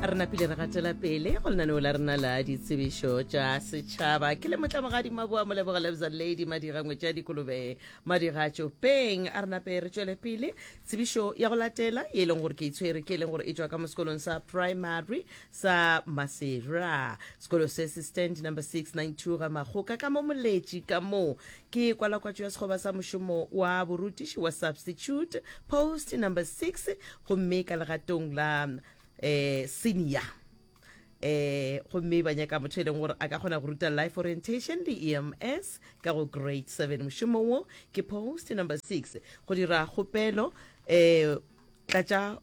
re napile re gatela pele go lenaneo la rena la ditsebišo tša setšhaba ke le motlamogadi maboa moleboga lebza lady madirangwe tša dikolobe madigatšo peng a re nape re tšwele pele tsebišo ya go latela e leng gore ke itshwere ke e leng gore e tšwa ka mo sekolong sa primary sa masera sekolo se se stand number 692 ga magoka ka mo moletši ka moo Ke kwalakwatšo ya sekgoba sa mošomo wa borutiši wa substitute post number six gomme ka legatong la um senior eh gomme ba nyaka motho e leng gore a ka kgona go ruta life orientation le ems ka go grade seven mošomo wo ke post number six go dira kgopelo um tlatša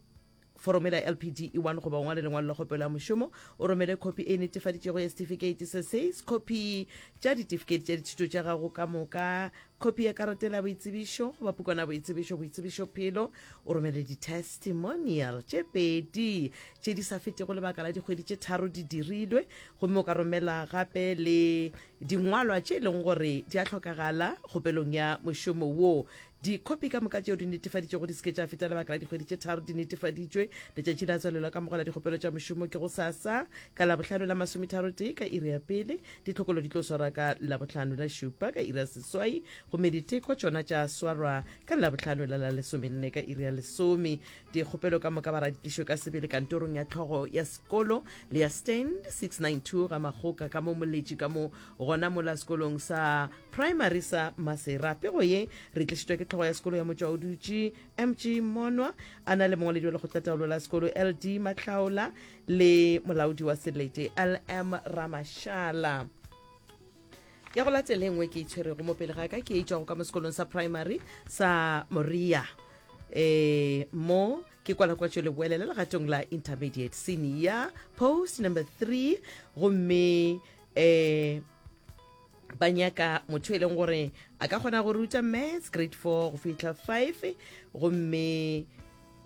Foromela ya LPD E1 goba o ngwale lengwalo la kgopelo ya mošomo, o romele khopi e netefaditšwego ya setifikeiti se seis, khopi tša ditifikeiti tša dithuto tša gago ka moka, khopi ya karatela ya boitsebišo goba pukwana ya boitsebišo, boitsebišophelo, o romele ditestimonial tše pedi tše di sa fetego lebaka la dikgwedi tše tharo di dirilwe, gomme o ka romela gape le dingwalwa tše e lego gore di a hlokagala kgopelong ya mošomo wo. Dikhopi ka moka tšeo di netefaditšwego di se ke tša feta lebaka la dikgwedi tše tharo di netefaditšwe. Letšatši la tswalelwa ka mogwela dikgopelo tša mošomo ke go sasa ka Labohlano la masometharotee ka iri ya pele. Ditlhokolo di tlo swarwa ka Labohlano la šupa ka iri ya seswai gomme diteko tšona tša swarwa ka Labohlano la la lesomenne ka iri ya lesome. Dikgopelo ka moka ba ra di tlišwe ka sebele kantorong ya tlhogo ya sekolo le ya Stand 692 ga Makgoka ka mo Moletši ka mo gona mola sekolong sa Primary sa Masera. Pego ye re tlišitšwa ke tlhogo ya sekolo ya motšwa o dutše MG Monwa a na le mongwaledi wa lekgotlataolo la sekolo LD Matlhaola le molaodi wa selete LM Ramashala ya go latele nngwe ke itshwerego mo pele ga ka ke e tšwago ka mo sekolong sa primary sa moria eh mo ke kwala kwa tšwele boele le legatong la intermediate senior post number three gomme eh ba nyaka motho e leng gore a ka kgona go ruta maths grade four go fitlha five gomme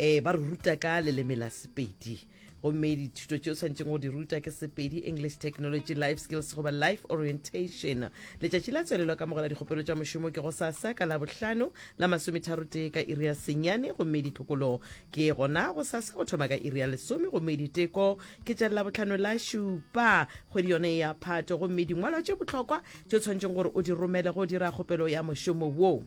um ba re ruta ka leleme la sepedi gomme dithuto tse o tshwanetseng go di ruta ke sepedi english technology life skills goba life orientation letšatši la tswelelo ka mogela dikgopelo tša mošomo ke go sasa ka labohlano la masometharo tee ka iri ya senyane gomme ditlhokolo ke gona go sasa go thoma ka iri ya lesome gomme diteko ke tša labotlhano la šupa kgwedi yone ya phato gomme dingwalwa tše bohlokwa tše tshwanetseng gore o di romele go dira kgopelo ya mošomo woo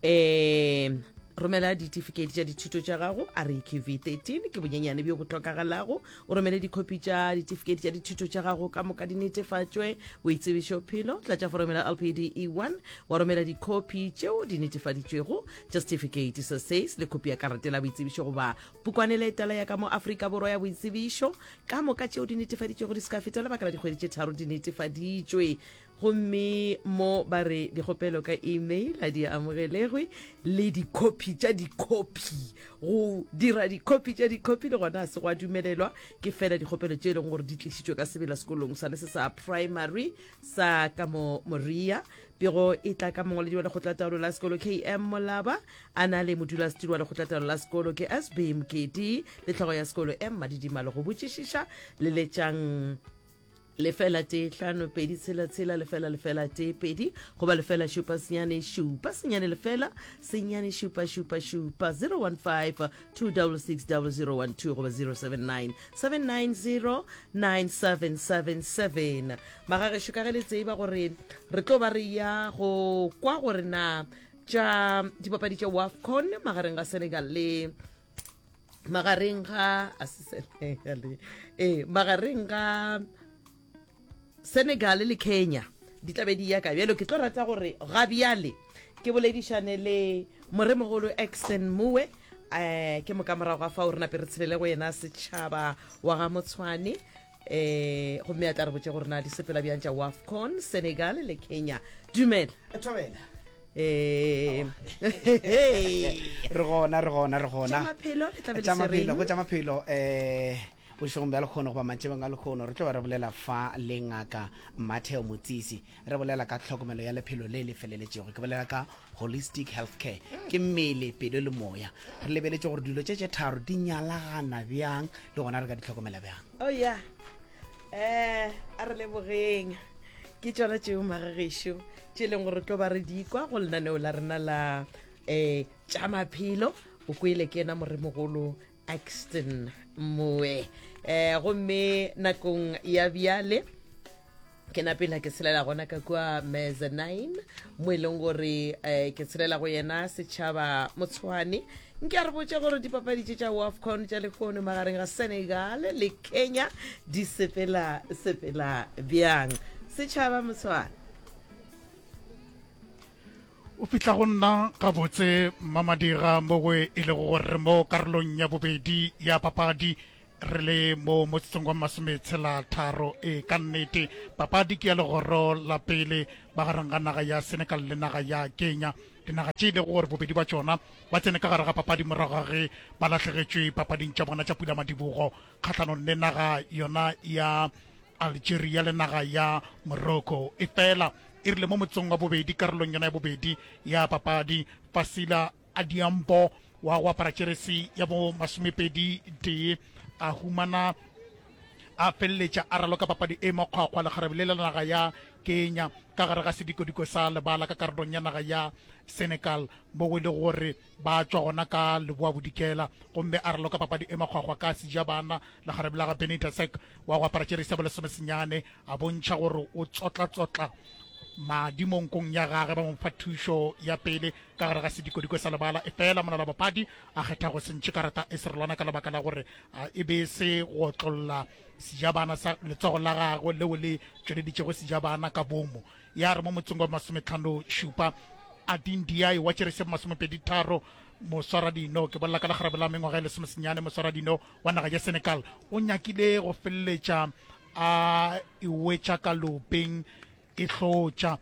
um romela ditifiketi tša dithuto tša gago reqv 13 ke bonyenyane bjo bo tlhokagalago o romele dikhopi tša ditifiketi tša dithuto tša gago ka moka di netefatšwe boitsebišo phelo tlatša foromela lpde 1 wa romela dikhopi tšeo di netefaditšwego tša setifikeiti sa says le khopi ya karate la boitsebišo goba Pukwane le etela ya ka mo Afrika Borwa ya Boitsebišo. Ka moka tšeo di netefaditšwego di se ka feta lebaka la dikgwedi tše tharo di netefaditšwe gomme mo ba re dikgopelo ka email a di amogelegwe le dikhopi tša dikhopi go dira dikhopi tša dikhopi le gona a se go a dumelelwa ke fela dikgopelo tše e leng gore di tlišitšwe ka sebela sekolong sane se sa primary sa ka mo moria Pego e tla ka mongwaledi wa lekgotlataolo la sekolo km molaba a na le modulasetiri wa lekgotlataolo la sekolo ke sb mokedi le tlhogo ya sekolo m madidimalo go botšišiša leletšang lefela tee hlano pedi tshela tshela lefela lefela tee pedi goba lefela šupa senyane šupa senyane lefela senyane šupa šupa šupa 015 2660012 goba 079 790 9777 magagešo ka ge le tseba gore re tlo ba re ya go kwa gore na tša dipapadi tša wafcon magareng ga senegal le magareng ga a se senegal ee magareng ga senegal le kenya di tlabe di yaka bjalo ke tlo rata gore ga bjale ke boledišane le moremogolo exton mowe um ke moka morago ga fa o re nape re tshelele go yena setšhaba wa ga motshwane um gomme a tla re botse gore na di sepela bjang tša wafcon senegal le kenya dumela um re gona re gona re gona maphelo le tlabe le tša se reng? maphelo go tša maphelo um bošegong bja lekgono goba mantšebeng a lekgono re tlo ba re bolela fa le ngaka matheo motsisi Re bolela ka tlhokomelo ya lephelo le le feleletšego, ke bolela ka holistic health care, ke mmele, pelo le moya. Re lebeletše gore dilo tše tše tharo di nyalagana bjang le gona re ka di tlhokomela bjang. Oh yeah. Eh, a re lebogeng. Ke tšona tšeo magagešo tše e leng gore tlo ba re di kwa go lenaneo la rena la um tša maphelo o kwele ke ena moremogolo axton moe eh gomme nakong ya bjale ke napela ke tshelela gona ka kua mezzanine mo e leng gore um ke tshelela go yena setšhaba motshwane nke a re botse gore dipapadi tše tša wafcon tša lehono magareng ga senegal le kenya di sepela sepela bjang setšhaba motshwane O fihla go nna gabotse Mmamadira mo go e lego gore re mo karolong ya bobedi ya papadi re le mo motsotsong wa masometshela-tharo. E, ka nnete papadi ke ya legoro la pele magareng ga naga ya Senegal le naga ya Kenya, dinaga tše e lego gore bobedi bja tšona ba tsene ka gare ga papadi morago ga ge ba lahlegetšwe papading tša bona tša pula-madibogo kgahlanong le naga yona ya Algeria le naga ya Morocco. Efela e rile mo motsong wa bobedi karolong yona ya bobedi ya papadi, Fasila Adiambo wa go apara jeresi ya bo masomepedi tee a humana a feleletša a raloka papadi e makgwakgwa lekgarebe le la naga ya Kenya ka gare ga sedikodiko sa lebala ka karolong ya naga ya Senegal mo go e le gore Ba tšwa gona ka Leboabodikela gomme a raloka papadi e makgwakgwa ka Sejabana le kgarebe la ga Benny Tasek wa go apara tšerisi ya bolesome senyane a bontšha gore o tsotlatsotla madi mo nkong ya gage ba mo fa thušo ya pele ka gare ga sedikodiko sa lebala efela monala bapadi a kgetha go sentšhe karata e serolwana ka lebaka la gore a, e be se go otlolla sejabana sa letsogo la gagwe leo le tšweleditšego sejabana ka bomo ya re mo motseng wa masometlhano šupa ading diai wa tšeresep masomepedi tharo moswara dino ke bolela ka lekgarebe la mengwaga e lesomesenyane moswara dino wa naga ya senegal o nyakile go feleletša a ewetša ka lopeng e hlotša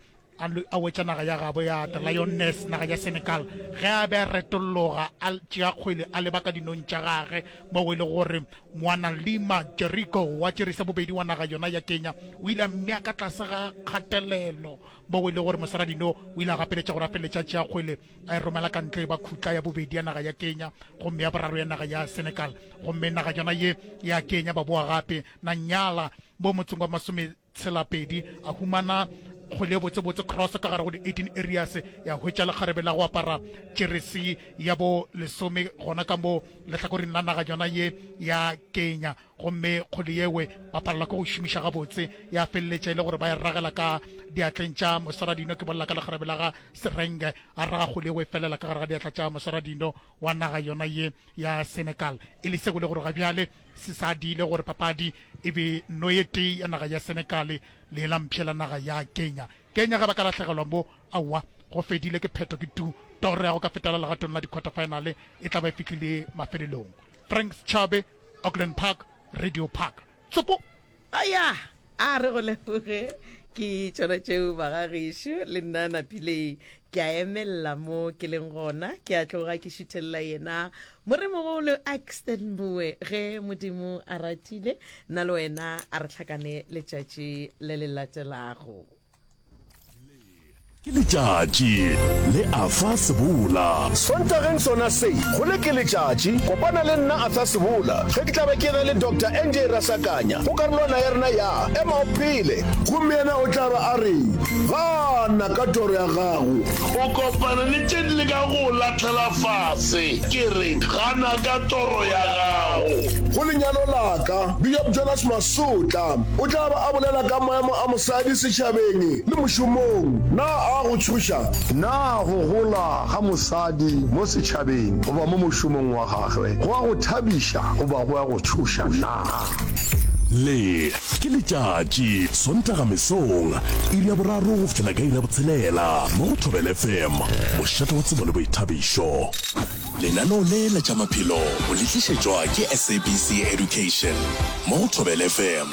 a wetša naga ya gabo ya the lioness naga ya senegal ge a be a retologa a tšea kgwele a leba ka dinong tša gage mo e le gore Mwanalima Jeriko wa tšeri sa bobedi wa naga yona ya Kenya o ile a mmea ka tlase ga kgatelelo moo e le gore mosaradino o ile a gapeletša go rapeletša tšeakgwele a e romela ka ntle ba khutla ya bobedi ya naga ya Kenya gomme ya boraro ya naga ya Senegal gomme naga yona ye ya Kenya ba boa gape na nyala mo motseng wa masome Tselapedi, a humana go le botsebotse cross ka gare go di 18 areas, ya hwetša lekgarebe la go apara jeresi ya bo lesome gona ka mo lehlakoring la naga yona ye ya Kenya, gomme kgole yewe ba palelwa ke go šomiša gabotse, ya feleletša e le gore ba e ragela ka diatleng tša Mosaradino, ke bolela ka lekgarebe la ga Serenge, a raga kgole yewe e felela ka gare ga diatla tša Mosaradino. wa naga yona ye ya Senegal e le sego le gore ga bjale se sa diile gore papadi e be no ye tee ya naga ya Senegal le la mpshe la naga ya Kenya. Kenya ga ba ka lahlegelwa mo, aowa, go fedile ke phetho ke tu toro ya go ka fetela legatong la di-quarterfinale e tla ba e fihlile mafelelong. Frank Chabe, Auckland Park, Radio Park. Tsoko a ya a re go leboge ke tšona tšeo bagagešu le nna napileng ke a emelela mo ke leng gona ke a tloga ke šuthelela yena moremogolo axton mboe ge modimo a ratile nna le wena a re tlhakane letšatši le le latelago ke letšatši le a fa sebola sontageng sona se go le ke letšatši kopana le nna a fa sebola ge ke tla be ke re le dr nj rasakanya go karolwana ya rena ya ema o phele gomme yena o tla be a re gana ka toro ya gago o kopana le tše di le ka go lahlela fase ke re gana ka toro ya gago go lenyalo laka bjop jonas Sotla o tla ba a bolela ka maemo a mosadi setšhabeng le mošomong. Na a go tšhoša? Na go gola ga mosadi mo setšhabeng goba mo mošomong wa gagwe go a go thabiša goba go a go tšhoša na? Le ke letšatši, Sontaga mesong, iri ya boraro go fihlela ka iri ya botshelela mo go Thobela FM, mošate wa tsebo le boithabišo. Lenaneo le la tša maphelo o le tlišetšwa ke SABC Education mo go Thobela FM.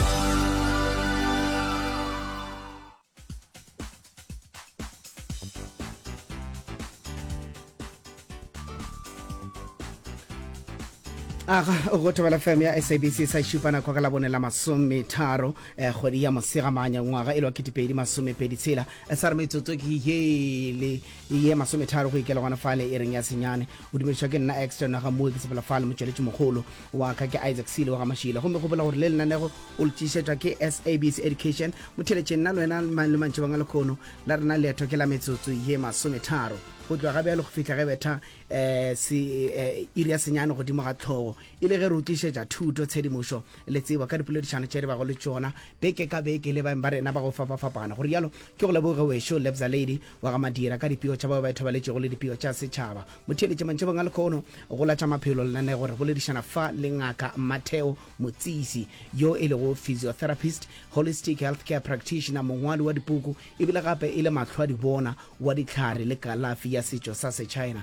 aga go thobela fm ya sabc sa šupa nako ka labone la masometharo um eh, kgwedi ya mosegamanya ngwaga e le wa ketepedi masomepedi tshela eh, sa re metsotso ke ye le e ye masometharo go ikela gona fale e reng ya senyane o dumedišwa ke nna extra naga mue ke sepela fale motšweletši mogolo wa ka ke isaac sele wa ga mašile gomme gopola gore le lenanego o le tšišetšwa ke sabc education motheletše nna le wena le mantši banga lekgono la rena leeto ke la metsotso ye masometharo go tloga ga bjalo go fihla ge betha um se iri ya senyane godimo ga tlhogo e le ge re utlišetša thuto tshedimošo le tsebo ka dipoledišano tše re bago le tšona beke ka beke le baeng ba rena ba go fapafapana go rialo ke go leboge wešo lebza lady wa ga Madira ka dipego tša bao ba ithobaletšego le dipego tša setšhaba. Motheeletše mantšhebong a lekhono go la tša maphelo lenaneo re boledišana fa le Ngaka Matteo Motsisi yo e lego physiotherapist, holistic healthcare practitioner, mongwali wa dipuku e bile gape e le mahlwadibona wa dihlare le kalafi ya setšo sa Sechina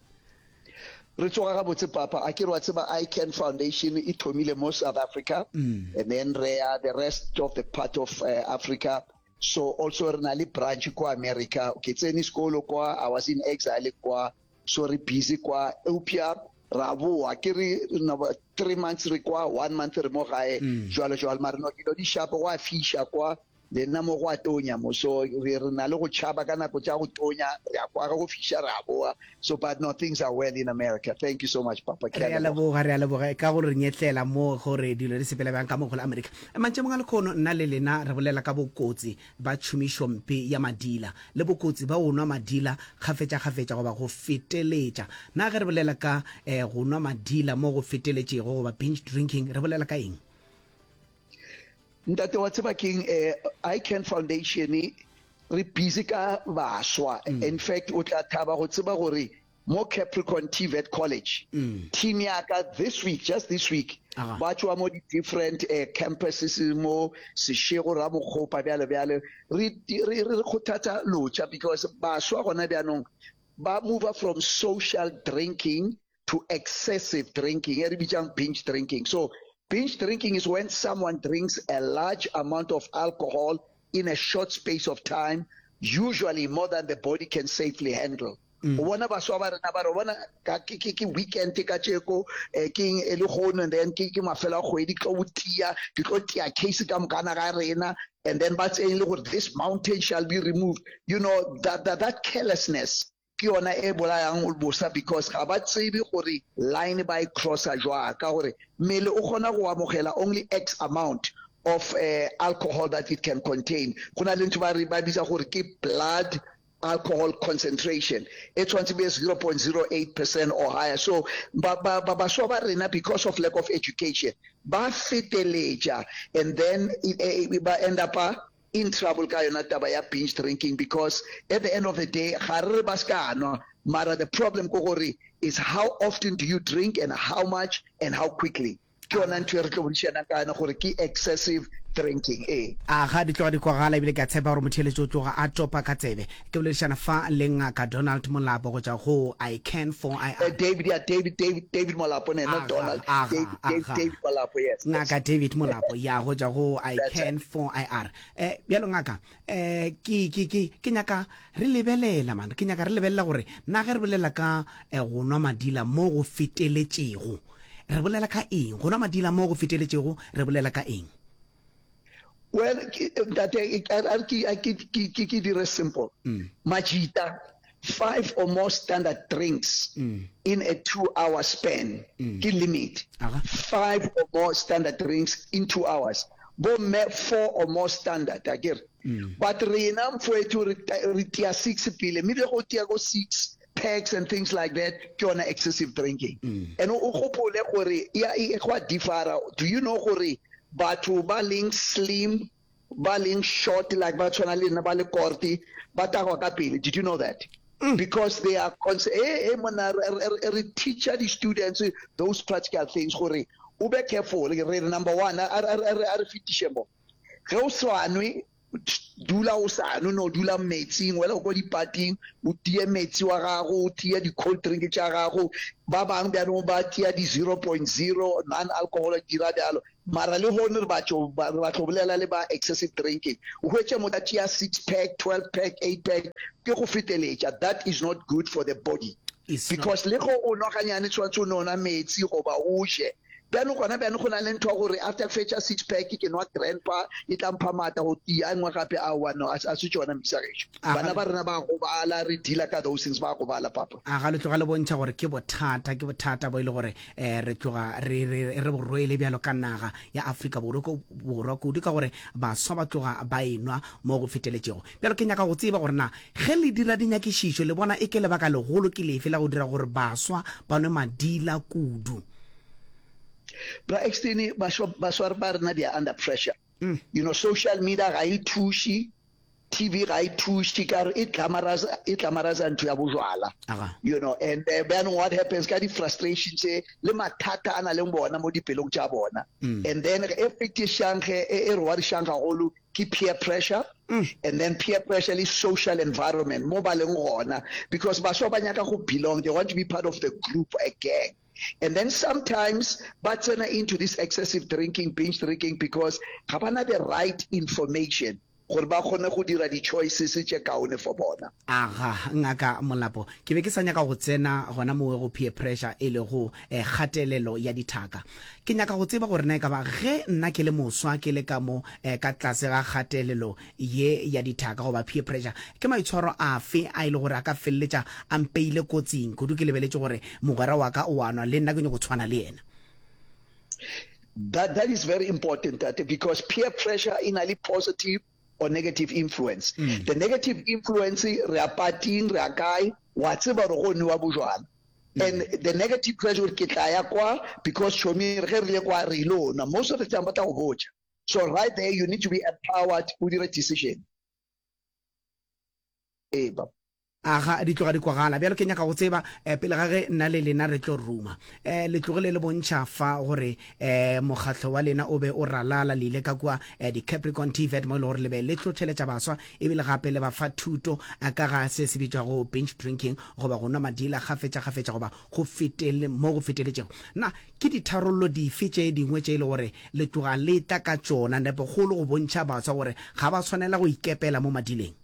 re tsoga gabotse papa a ke re wa tseba ican foundation e thomile mo south africa mm. and then re ya the rest of the part of uh, africa so also re na le branch kwa america ke tsene sekolo kwa i was in exile kwa so re busy kwa eupša ra boa ke re three months re kwa one month re mo gae mm. jalo jalo mare no dilo di shapo wa fisha kwa Le nna mo go a tonya moso, re re na le go tšhaba ka nako tša go tonya, re a kwara go fiša re a boa, so but no things are well in America, thank you so much Papa, ke a leboga. Re a leboga, re a leboga ka go re nyetlela mo go re dilo di sepela bjang ka mo go la America. Mantšemong a lekhono nna le lena re bolela ka bokotsi ba tšhomišompe ya madila le bokotsi ba go nwa madila kgafetšakgafetša goba go feteletša. Na ge re bolela ka eh, go nwa madila mo go feteletšego goba binge drinking re bolela ka eng? Ntate wa tseba keng eh, ICAN Foundation re busy ka baswa mm. in fact o tla thaba go tseba gore mo Capricorn TVET College mm. team ya ka this week just this week ba tswa mo different uh, campuses mo seshego ra bokgopa bjalo bjalo re re re khothatsa locha because baswa gona bjanong ba move from social drinking to excessive drinking e re bitsang binge drinking so binge drinking is when someone drinks a large amount of alcohol in a short space of time usually more than the body can safely handle mm. o bona baswa ba rena ba re bona ke weekend ka tšeko eh, ke e le gono and then ke mafelo a kgwedi tlo o tia ke tlo tia case ka mokana ga rena and then ba tseyeng le gore this mountain shall be removed you know that, that, that carelessness ke yona e bolayang bosa because ga ba tsebe gore line ba e crossa jwang ka gore mmele o kgona go amogela only x amount of uh, alcohol that it can contain go na le ntho ba re ba bitsa gore ke blood alcohol concentration e tshwanetse be 0.08 percent or higher so baswa ba rena because of lack of education ba feteletša and then e, e, e, ba end up in trouble ka yona taba ya binge drinking because at the end of the day ga re re ba se ka nwa mara the problem ko gore is how often do you drink and how much and how quickly ke yona ntho e re tlo bodišanang ka yona gore ke excessive drinking ee. A ga di tloga di kwagala ebile ke a tshepa gore motheeletši o tloga a topa ka tsebe. Ke boledišana fa le Ngaka Donald Molapo go tšwa go I can for I am. David, ya David, David, David Molapo, ne, not Donald, David, David, David Molapo, yes, yes. Ngaka David Molapo, ya go tšwa go I That's can right. for I are. Eh, bjalo ngaka, eh, ke, ke, ke, ke nyaka re lebelela, man, ke nyaka re lebelela gore na ge re bolela ka eh, go nwa madila mo go feteletšego, re bolela ka eng? Go nwa madila mo go feteletšego, re bolela ka eng? well ntate a ke dire simple mm. majita five or more standard drinks mm. in a two hour span mm. ke limit five or more standard drinks in two hours bomme four or more standard a kere mm. but rena mfoetho re tia six pele mme le go tia ko six packs and things like that ke yona excessive drinking mm. and o gopole gore ya e, e gwa differa do you know gore batho ba leng slim ba leng short like ba tshwana le nna ba le korte ba tagwa ka pele did you know that mm. because they are eh eh mona re teacher the students those practical things gore o be careful re number 1 a re fitiše mo ge o swanwe dula o sa no no dula metsing wela go kwa dipating o tie metsi wa gago o tie di-cold drink tša gago ba bangwe bjanong ba tia di-zero point zero non alcohol dira bjalo mara le gone re batho re batlo bolela le ba excessive drinking o hwetše motho a tia six pack twelve pack eight pack ke go feteletša that is not good for the body because le go o noganyane tshwanetse o nona metsi goba o je bjano gona bjano go na le ntho gore after ke fetša six pack ke nwa grandpa e tla mpha maatla go tia e nngwe gape a one a se tsona mmisageso bana ba rena ba gobala re dealer ka those things ba gobala papa a ga le tloga le bontšha gore ke bothata ke bothata bo e le gore um re tloga re borwele bjalo ka naga ya afrika borwa kudu ka gore baswa ba tloga ba enwa mo go feteletšego bjalo ke nyaka go tseba gore na ge le dira dinyakišišo le bona e ke lebaka legolo ke lefe la go dira gore baswa ba nwe madila kudu Bra Extini baswari ba rena they are under pressure. Mm. You know social media ga e thuši, TV ga e thuši ka re e glamorize e glamorize ntho ya bojwala. You know and uh, then what happens ka di frustration tse le mathata ana le bona mo dipelong tsa bona. Mm. And then e fetishang ge e re wa dishang gagolo ke peer pressure mm. and then peer pressure le social environment mo ba leng gona because baswa ba nyaka go belong they want to be part of the group a gang and then sometimes ba tsena into this excessive drinking binge drinking because ga bana the right information gore ba kgone go dira di-choices tše kaone for bona Aga, Ngaka Molapo, ke be ke sa nyaka go tsena gona mo go peer pressure e lego eh, kgatelelo ya dithaka. Ke nyaka go tseba gore na e ka ba ge nna ke le moswa ke le ka mo eh, ka tlase ga kgatelelo ye ya dithaka goba peer pressure, ke maitshwaro afe a e le gore a ka feleletša a mpeile kotsing kudu ke lebeletše gore mogwera wa ka o a nwa le nna ke nyoko tshwana le yena. That, that is very important, Tate, because peer pressure e na le positive or negative influence mm. the negative influence re a pating re a kae wa tseba gore go newa bojwala mm. and the negative pressure ke tla ya kwa because chomi re re le kwa re ile ona most of the time ba tla go botša so right there you need to be empowered o dire decision ee baba Aga, di tloga di kwagala. Bjalo ke nyaka go tseba, eh, pele ga ge nna le lena re tlo ruma, eh, le tlogile le bontšha fa gore, eh, mokgatlo wa lena o be o ralala, le ile ka kua, eh, di-Capricorn TVET mo e le gore le be le hlohleletša baswa ebile gape le ba fa thuto, eh, ka ga se se bitšwago binge drinking goba go nwa madila kgafetšakgafetša goba go fetel, mo go feteletšego. Na ke ditharollo dife tše dingwe tše e le gore le tloga le tla ka tšona, nepo kgolo go bontšha baswa gore ga ba swanela go ikepela mo madileng?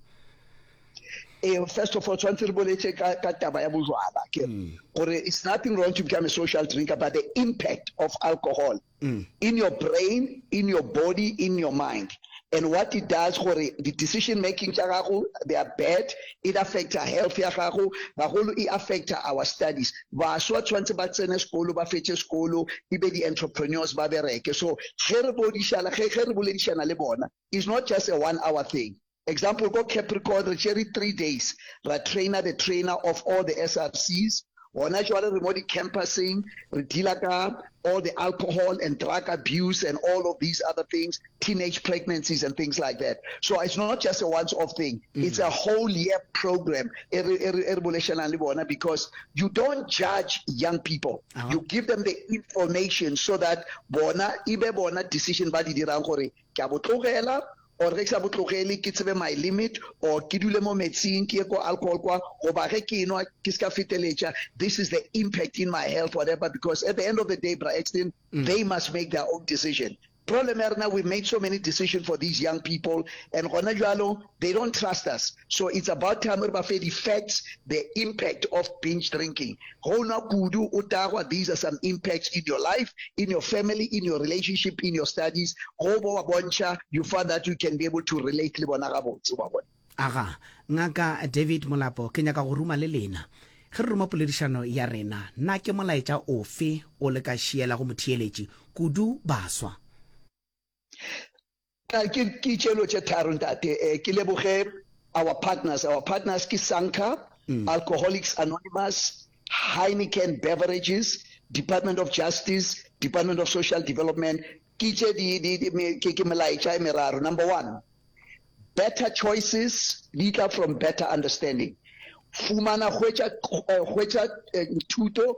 Eh, first of all, tshwanetse re boletse ka, ka taba ya bojwala ke mm. gore it's nothing wrong to become a social drinker but the impact of alcohol mm. in your brain in your body in your mind and what it does gore the decision making tša gago they are bad it affecta health ya gago gagolo e affecta our studies baswa tshwanetse ba tsene sekolo ba fetse sekolo e be di-entrepreneurs ba bereke so ge re bodišana ge re boledišana le bona is not just a one hour thing Example, ko Capricorn re tšere three days ra trainer the trainer of all the SRCs, gona jwale re mo di campuseng re dealer ka all the alcohol and drug abuse and all of these other things, teenage pregnancies and things like that. So it's not just a once off thing, it's a whole year program e re e re e re bolešelang le bona because you don't judge young people, you give them the information so that bona e be bona decision ba di dirang gore Ke a bo tlogela or ge ke sa bo tlogele ke tsebe my limit or ke dule mo metsing ke ye ko alcohol kwa goba ge ke enwa ke se ka feteletša this is the impact in my health whatever because at the end of the day bra Exton mm. they must make their own decision problem ya rena we made so many decision for these young people and gona jalo they don't trust us So it's about time re ba fe di facts, the impact of binge drinking. Ge o nwa kudu o tagwa, these are some impacts in your life, in your family, in your relationship, in your studies. Ge o bo ba bontšha, you find that you can be able to relate le bona gabotse, wa bona. Aga, Ngaka David Molapo, ke nyaka go ruma le lena. Ge re ruma poledišano ya rena, na ke molaetša ofe o le ka šielago motheeletši kudu baswa? Ka ke ke tšelo tše tharo ntate eh, ke leboge our partners our partners ke Sanka mm. Alcoholics Anonymous Heineken Beverages Department of Justice Department of Social Development ke tše di di di me, ke ke melaetša e meraro number 1 better choices di tla from better understanding fumana hwetša eh, hwetša eh, thuto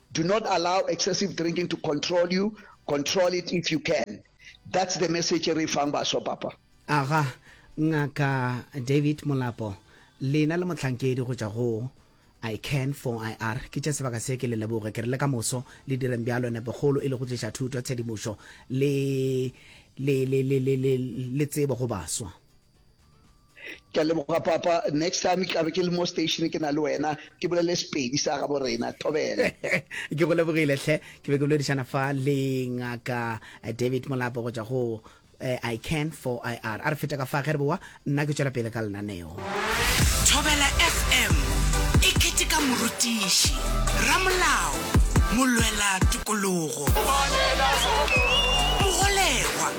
Do not allow excessive drinking to control you, control it if you can. That's the message e re e fang baswa, Papa. Aga, Ngaka David Molapo, lena le mohlankedi go tšwa go I can for IR. Ke tše sebaka se ke le leboge. Ke re le ka moso le direng bjalo, nepokgolo e le go tliša thuto, tshedimošo le, le, le, le, le, le, le tsebo go baswa. ke leboga papa next time ke tlabe ke le mo station ke na le wena ke bolele sepedi sa gabo rena thobele ke go lebogile tlhe ke be ke boledišana fa le ngaka eh, david molapo go tšwa go eh, i can for i r a re feta ka fa ge re bowa nna ke tšwela pele ka lenaneo thobela fm e keteka morutiši ramolao molwela tokologo mogolegwa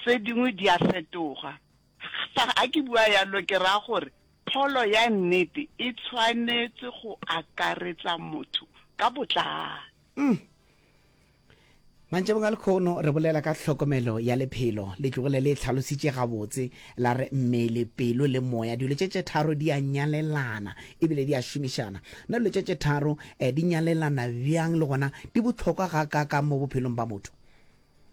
Tse dingwe di a fetoga. Fa a ke bua yalo ke raya gore pholo ya nnete e tshwanetse go akaretsa motho ka botlalo. Uhm. Mantšhabong a lekhono re bolela ka tlhokomelo ya lephelo. Letlogile le e tlhalositše gabotse, la re mmele, pelo le moya, dilo tše tše tharo di a nyalelana e bile di a šomišana. Na dilo tše tše tharo di nyalelana bjang le gona di bohlokwa gakaakang mo bophelong bja motho?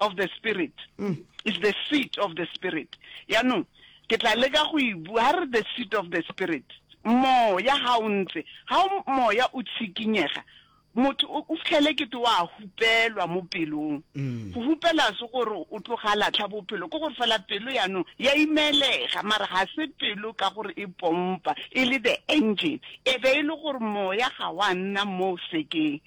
of the spirit mm. is the seat of the spirit yaanong ke tla leka go e bua ga re the seat of the spirit moya ga o ntse ga moya o tshikinyega motho o fitlhele kete wa hupelwa mo pelong mm. go hupela se gore o tloga latlha bophelo ke gore fela pelo yaanong ya imelega mara ga se pelo ka gore e pompa e le the engine e be e le gore moya ga wa nna mo sekeng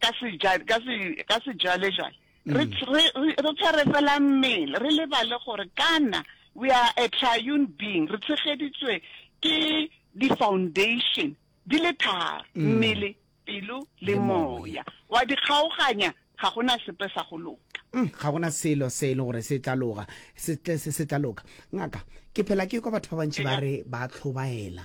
ka se ja ka se ka se jale jale re mm. re re tshwere fela mmele re lebale gore kana we are a triune being re tshegeditswe ke di foundation di le tharo mm. mmele pelo le moya wa di kgaoganya ga gona sepe sa go loka mm, ga gona selo se e le gore se tla loga se tla loka ngaka ke phela ke kwa batho ba bantši ba re ba tlhobaela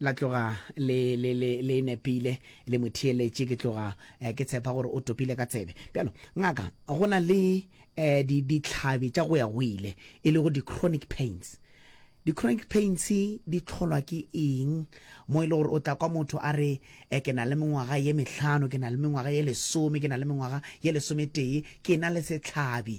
la tloga le le le le nepile le mo theeletše ke tloga eh, ke tshepa gore o topile ka tsebe bjalo ngaka go na le eh, di ditlhabi tša go ya go ile e lego di-chronic pains di-chronic pains di tlholwa ke eng mo e le gore o tla kwa motho a re eh, ke na le mengwaga ye mehlano ke na le mengwaga ye lesome ke na le mengwaga ye lesometee ke na le setlhabi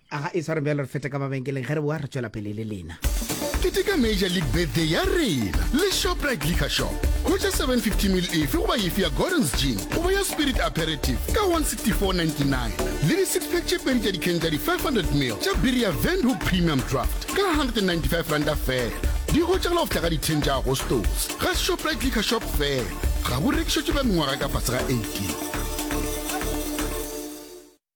Aga e sware bjalo re fete ka mabenkeleng ge re boa re tšwela pele le lena. Keteka Major League Birthday ya rena le Shoprite Liquor Shop. Hwetša 750 mil efe goba efe ya Gordon's Gin goba ya Spirit Aperitif ka 164.99 le di-six-pack tše pedi tša dikhen tša di-500 mil tša biri ya Windhoek Premium Draft ka 195 ranta fela. Di hwetšagala go fihla ka di-10 tša Agostose ga Shoprite Liquor Shop fela. Ga bo rekišetšwe ba mengwaga ka fase ga 18.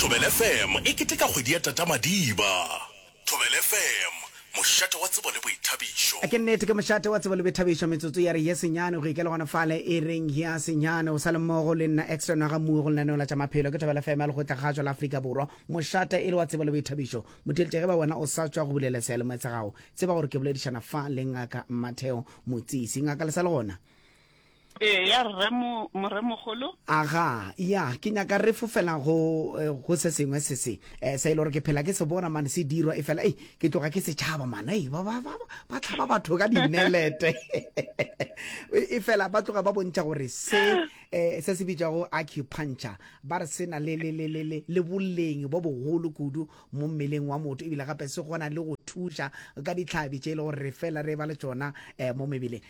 Thobela FM e keteka kgwedi ya Tatamadiba. Thobela FM, mošate wa tsebo le boithabišo. Ke nnete, ke mošate wa tsebo le boithabišo. Metsotso ya re ye senyane go ikela gona fale e reng ya senyane. O sa le mmogo le nna Extra Nwaga Mmuo go lenaneo la tša maphelo. Ke Thobela FM ya Lekgotla Kgašo la Afrika Borwa. Mošate e le wa tsebo le boithabišo. Motheletša ge ba wena o sa tšwa go bulela seyalemoya sa gago, tseba gore ke boledišana fa le Ngaka Matheo Motsisi. Ngaka le sa le gona? Eya rre mo moremogolo. Aga, ya, ke nyaka re fofela go eh, go se sengwe se se eh, se e le gore ke phela ke se bona mane se dirwa e fela ei ke tloga ke setšhaba mane ei ba ba- ba- ba- ba tlhaba batho ka dinelete e fela ba tloga ba bontšha gore se eh, se se bitšwago acupuncture ba re se na le le- le- le- le- le boleng bo bogolo kudu mo mmeleng wa motho ebile gape se kgona le go thuša ka ditlhabi tše e le gore re fela re ba le tsona eh, mo mebeleng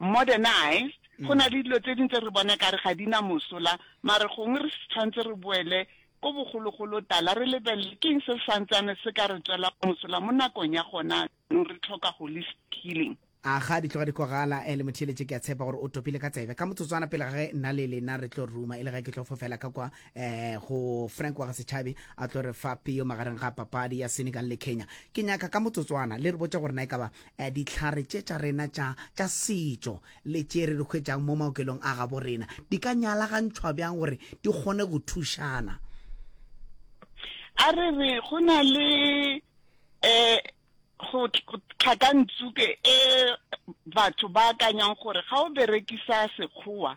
Modernized, go na le dilo tse ding tse re bona ekare ga di na mosola, mare gongwe re tshwanetse re boele ko bogologolo tala re lebelele keng se santsane se ka re tswela mosola mo nakong ya gona anong re tlhoka holistic healing. A ga di tloga di kwagala eh, le motheeletše ke a tshepa gore o topile ka tsebe. Ka motsotswana pele ga ge nna le lena re tlo ruma e le ge ke tlo fofela ka kwa eh go Frank wa ga Setšhabi a tlo re fa peo magareng ga papadi ya Senegal le Kenya. Ke nyaka ka motsotswana le re botše gore na e ka ba Dihlare tše tša rena tša tša setšo le tše re di hwetšang mo maokelong a gabo rena di ka nyalagantšhwa bjang gore di kgone go thušana? A re re go na le um go tlhakantsuke e batho ba akanyang gore ga o berekisa Sekgowa,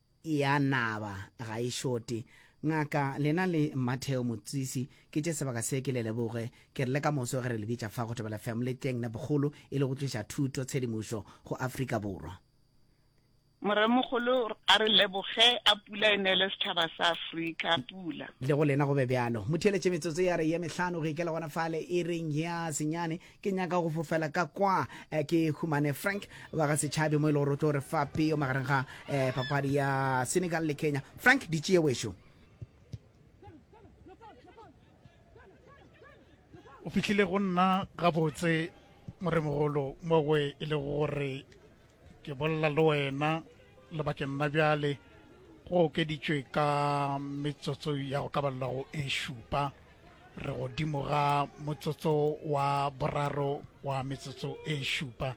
Ya naba ga e šote. Ngaka, lena le Matheo Motsisi, ke tše sebaka se ke le leboge. Ke rile ka moso ge re le bitša fa go Thobela FM le tleng ne bogolo e le go tliša thuto, tshedimošo go Afrika Borwa. Moremogolo a re leboge, a pula e neele setšhaba sa Afrika pula. Le go lena go be bjalo. Mo theeletše metsotso ya re ye mehlano go ikela gona fale ireng ya senyane. ke nyaka go fofela ka kwa eh, ke humane frank wa ga setšhabe mo e le gore o tlo re fa peo magareng ga eh, papadi ya senegal le kenya frank di tšee wešo o fitlhile go nna gabotse moremogolo mo we e le gore ke bolela le wena lebakeng la bjale go okeditšwe ka metsotso ya go ka balela go e šupa re godimo ga motsotso wa boraro wa metsotso e šupa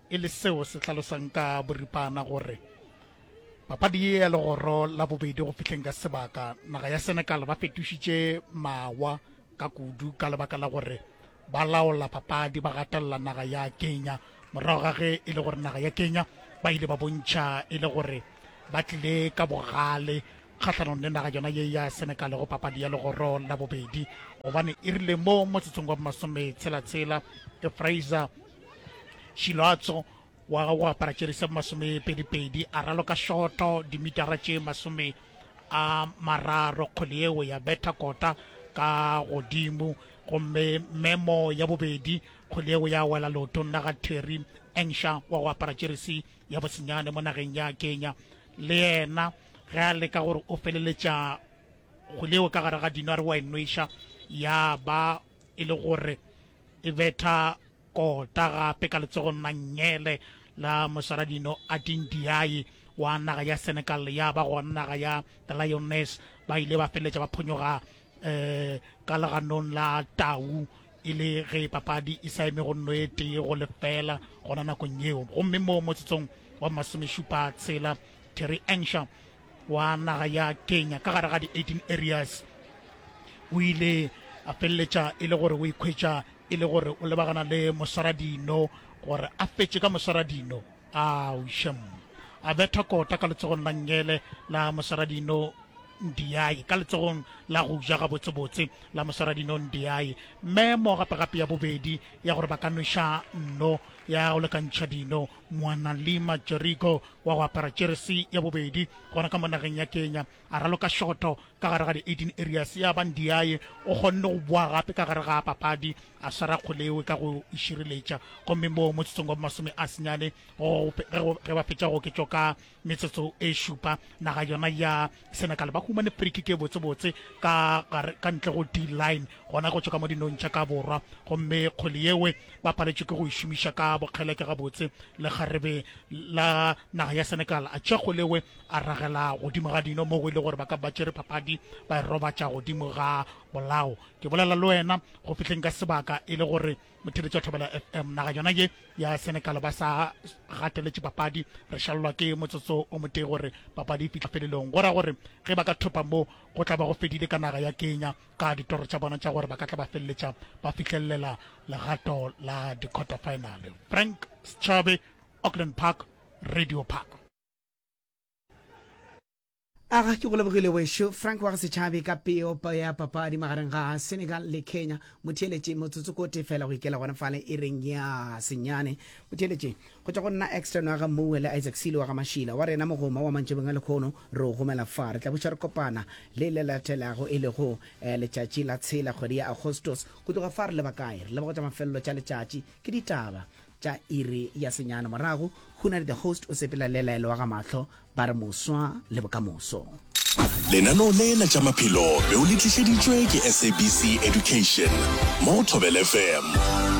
e le seo se hlalosang ka boripana gore papadi ye ya legoro la bobedi go fihleng ka sebaka naga ya senegal ba fetošitše mawa ka kudu ka lebaka la gore ba laola papadi ba gatelela naga ya kenya morago ga ge e le gore naga ya kenya ba ile ba bontšha e le gore ba tlile ka bogale kgahlanong le naga yona ye ya Senegal go papadi ya legoro la bobedi gobane e rile mo motsotsong wa bomasometshela-tshela ke Fraser Shiloatso wa go apara tšeri se masomepedi-pedi a raloka shoto dimitara tše masome a mararo kgwele yeo ya betha kota ka godimo gomme memo ya bobedi kgwele yeo ya wela leotong la ga Terry Engsha wa go apara tšerisi ya bosenyane mo nageng ya kenya le yena ge a leka gore o feleletša kgoleo ka gare ga dino a re wa enweša ya ba e le gore e betha kota gape ka letsogo nna nyele la mosaradino a tindiai wa naga ya senegal ya ba go naga ya the lioness ba ile ba feleletša ba phonyoga um ka leganong la tau e le ge papadi e sa eme go nno e tee go lefela gona nakong yeo gomme mo motsotsong wa masomešupa tshela terry ensha wa naga ya kenya ka gare ga di-18 areas o ile a feleletša e le gore o ikhwetša e le gore o lebagana le moswaradino gore a fetše ka moswaradino Aau shem! A betha kota ka letsogong la Ngele la Mosaradino Ndiaye, ka letsogong la go ja gabotsebotse la Mosaradino Ndiaye. Mme mo gape gape ya bobedi ya gore ba ka nweša nno ya go lekantšha dino, Moanalima Jerigo wa go apara jeresi ya bobedi gona ka mo nageng ya Kenya. A raloka šoto ka gare ga di-18 areas ya ba Ndiaye o kgonne go boa gape ka gare ga papadi a swara Kgoleoe ka go e šireletša gomme moo motsotsong wa bomasome a senyane ge ba fetša go oketšwa ka metsotso e šupa naga yona ya Senegal ba humane free kick e botsebotse ka gare ka ntle go D-line gona go tšwa ka mo dinong tša ka borwa gomme Kgoleoe ba paletšwe ke go e šomiša ka bokgeleke gabotse le kgarebe la naga ya Senegal a tšea Kgoleoe A ragela godimo ga dino moo go ile gore ba ka ba tšere phapadi ba e robatša godimo ga bolao. Ke bolela le wena go fihleng ka sebaka e le gore motheletši wa Thobela FM naga yona ye ya Senegal ba sa gateletše papadi. Re šalelwa ke motsotso o motee gore papadi e fihla felelong, go ra gore ge ba ka thopa mo go tla ba go fedile ka naga ya Kenya ka ditoro tša bona tša gore ba ka tla ba feleletša ba fihlelela legato la di-quarter final. Frank Schabe, Auckland Park, Radio Park. aga ke go lebogile wešo frank wa go setšhabe ka peo ya papadi magareng ga senegal le kenya motheeletše motsotso ko tefela go ikela gona fale e reng ya senyane motheeletše go tšwa go nna extern wa ga mowe le isaac sele wa ga mašila wa rena mogoma wa mantšebeng a lekgono re o gomela fa re tla buša re kopana le le latelago e lego eh, letšatši la tshela kgwedi ya agostos go tloga fa re leba kae re leba go tša mafelelo tša letšatši ke ditaba tša iri ya senyana morago go na le the host o sepela le laelo wa ga mahlo ba re moswa le bokamoso lenaneo lena tša maphelo be o le tlišeditšwe ke sabc education mo go thobel fm